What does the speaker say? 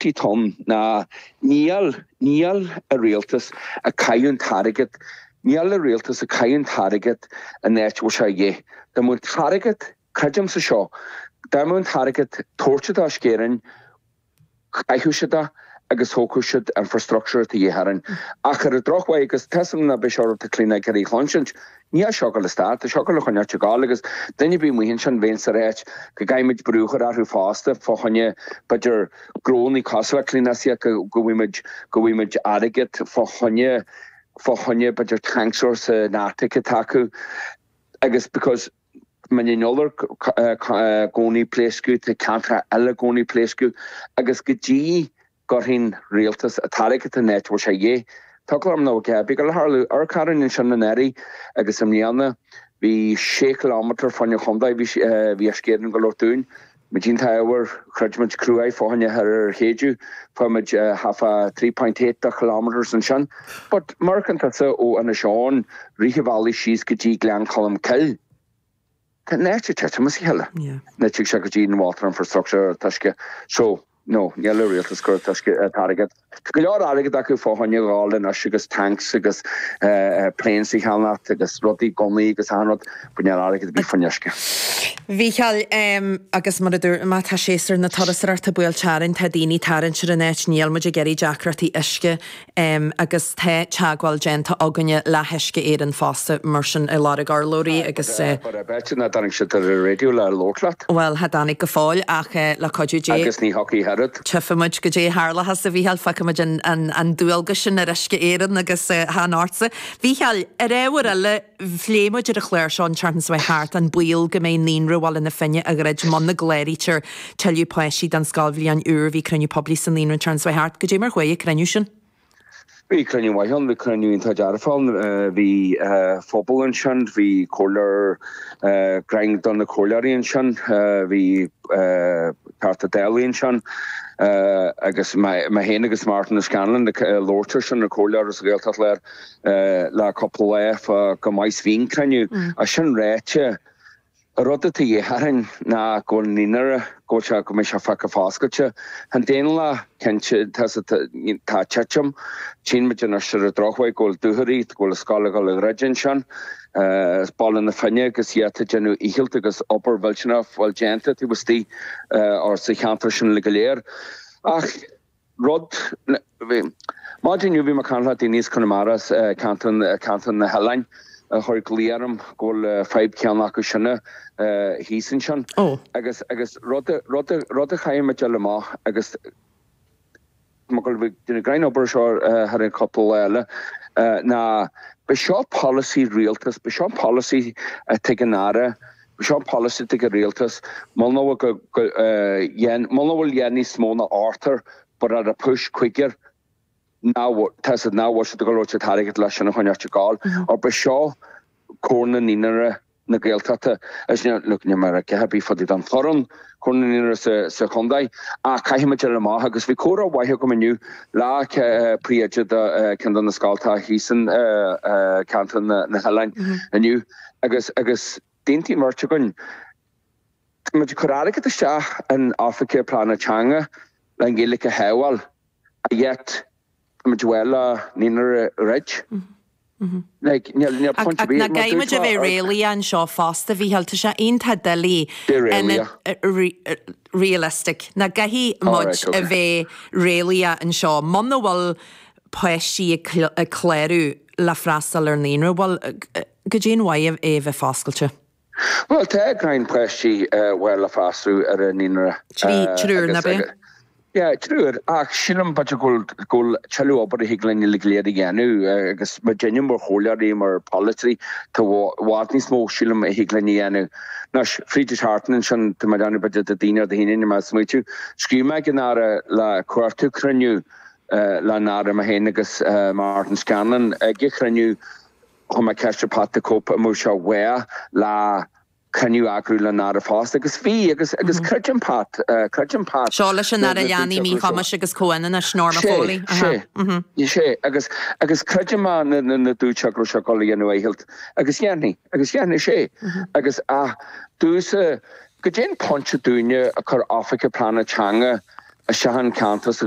Tí Tom, Ná níl, níl an rialtas ag caitheamh an t-airgead, níl a rialtas ag caitheamh an t-airgead in áit a bhfuil sé a dhíth. Dá mbeadh an t-airgead, creidimse seo, dá mbeadh an t-airgead tabhairte d'Uisce Éireann, chaithfeadh siad é agus thógfadh siad infrastructure atá de dhíth orainn. Ach ar an drochuair, agus tá a fhios agam nach b'é seo rud atá daoine ag iarraidh a chluinsint, Níl sé ag gabháil a stad, tá sé ag gabháil a choinneáilt ag gabháil agus duine ar bith amuigh ansin bheinnse ag ráit go gcaithfidh muid brú a chur orthu fosta fá choinne b'fhéidir grónaigh cosúil le Cliona Siaca go bhfaighidh muid go bhfaighidh muid airgead fá choinne fá choinne b'fhéidir tanks úr sna háiteacha atá acu agus because Mín an Iolair i gcónaí ag pléascadh tá ceantracha eile i gcónaí ag pléascadh agus go dtí gcuirfidh an rialtas an t-airgead in áit a bhfuil sé a dhíth. Tugtha orm níl a dhath ar bith ag gabháil a tharlú. Uisce Éireann ansin anuraidh agus i mbliana bhí sé chiliómeter fá choinne an chontae. Bhí sé, bhí Uisce Éireann go leor dúinn. Muid iontach ábhar. Throid muid cruaidh fá choinne thoir ar shéideadh. Fuair muid half a three point eight de chiliómeters ansin. But má amharcann tusa ó Inis Eoghain, rith an bhealaigh síos go dtí Gleann Cholm Cill. Tá na háiteacha ag titim as a chéile nuair a thig sé go dtí an water infrastructure an uisce so no, níl an rialtas ag cur toisce airgead. Tá go leor airgead acu fá choinne a dhul anois agus tanks agus planes a cheannacht agus rudaí gunnaí agus achan rud but níl airgead ar bith fá choinne uisce. A Mhícheáil, Ehm agus mar a dúirt mé tá séasúr na turasóireachta buailte orainn tá daoine ag tarraingt ar an áit níl muid ag iarraidh deacrachtaí uisce agus tá teagmháil déanta againne le hUisce Éireann fosta mar sin ag lorg urlabhraí agus. Bhuel, b'fhéidir nach dtáinig siad ar an raidió le labhairt leat? Bhuel, cha dtáinig go fóill, ach le cuidiú Dé. Agus ní thiocfaidh oiread. Tífimid goidé a tharlóchas, a Mhícheáil, fágfaimid an dualgas sin ar Uisce Éireann agus chan ortsa. A Mhícheáil, ar ábhar eile. Phléigh muid ar an chlár seo an tseachtain seo thart an baol go mbeidh Naíonra Bhaile na Finne ag druid muna gcláraítear tuilleadh páistí don scoilbhliain úr. Bhí cruinniú poiblí sa Naíonra an tseachtain seo thart. Goidé mar a chuaigh an cruinniú sin? Bhí cruinniú maith ann, bhí cruinniú iontach dearfach ann. Bhí an pobal ansin, bhí comhairleoir dream de na comhairleoirí ansin, bhí Teachta Dála ansin agus mé féin agus Martin Scanlon ag labhairt ar sin, an comhairleoir as Gaeltacht Láir. le cúpla lá go maith sa chruinniú. É sin ráite, an rud atá a dhíth orainn ná go bhfuil an naíonra, go bhfuil sé, go mbeidh sé fágtha foscailte. Aontaím leat, cinnte, tá sa, tá ag titim, tchíonn muid anois ar an drochuair go bhfuil Dúchoraidh, go bhfuil an scoil ag dul a dhruid ansin. Is Baile na Finne agus iad ag déanamh a ndícheall agus obair mhillteanach a bhfuil déanta taobh istigh or sa cheantar sin go léir. Ach. rud le bhí. Maidin inniu bhí mé ag caint le daoine as Conamara, ceantar na hoileáin, a chuir glao orm go bhfuil an fhadhb chéanna acu sin thíos ansin agus agus rud rud rud a chaithfidh mé a fháil amach agus mé ag gabháil a dhéanamh gráinnín obair seo thar an chúpla lá eile ná b'é seo polasaí rialtais, b'é seo polasaí a dtuigeann an tAire Seo an polasaí ag an rialtas, muna bhfuil dhéan níos mó ná ochtar but at a push cúigear ná tá siad nach bhfuil siad ag gabháil a thabhairt airgead leis sin a choinneáilt ag gabháil. Or b'é seo Comhar Naíonraí na Gaeltachta is ní look níl mé ag ráit a dhath ar bith fá dtaobh den Chomhar Comhar Naíonraí sa sa chondae ach caithfimid fáil amach agus bhí comhrá maith agam inniu le le príomhoide de cheann de na scoltacha thíos in ceantar na na hoileáin inniu Agus agus d'aontaigh an bheirt againn. Tá muid ag cur airgead isteach in oifigigh pleanála teanga leis an Ghaeilge a shábháil and yet tá muid ag amharc le naíonra a dhruid. Like níl níl point Ach nach gcaithfidh muid a bheith réalaíoch anseo fosta, Mhícheál, tá sé iontach doiligh bheith réalaíoch nó realistic. Nach gcaithfidh muid Alright a ok. bheith réalaíoch anseo. Muna bhfuil páistí ag ag clárú le freastal ar naíonra, bhuel, cad é an mhaith é a bheith foscailte. Bhuel, tá gráinnín páistí bhaile le freastal ar an naíonra. Trí, triúr nach b'ea? Yeah, triúr, ach sílim b'fhéidir go bhfuil, go bhfuil tuilleadh obair a thig linn uilig go léir a dhéanamh agus muidinne mar chomhairleoirí, mar pholaiteoirí, tá i bhfad níos mó sílim a thig linn a dhéanamh. Anois, fríd thart ansin, tá mé ag déanamh b'fhéidir Déardaoin nó Dé hAoine, níl mé ag smaoitiú. Scríobh mé ag an Aire ag cuartú cruinniú leis an Aire, mé féin agus Martin Scanlon ag iarraidh cruinniú, Chuir mé ceist ar Pat 'the Cope' an bhfuil sé mhaith le coinne a eagrú leis an Aire fosta agus bhí agus agus creidim Pat, creidim Pat Seo leis an Aire Leanaí, Míchumais agus Comhionannais, Norma Foley. Sé, sé, sé agus agus creidim a na na na dúirt sé go raibh sé ag dul a dhéanamh a dhícheall agus déanfaidh agus dhéanfaidh sé agus a dtús cad é an pointe dúinne ag cur oifigeach pleanála teanga ins achan ceantar sa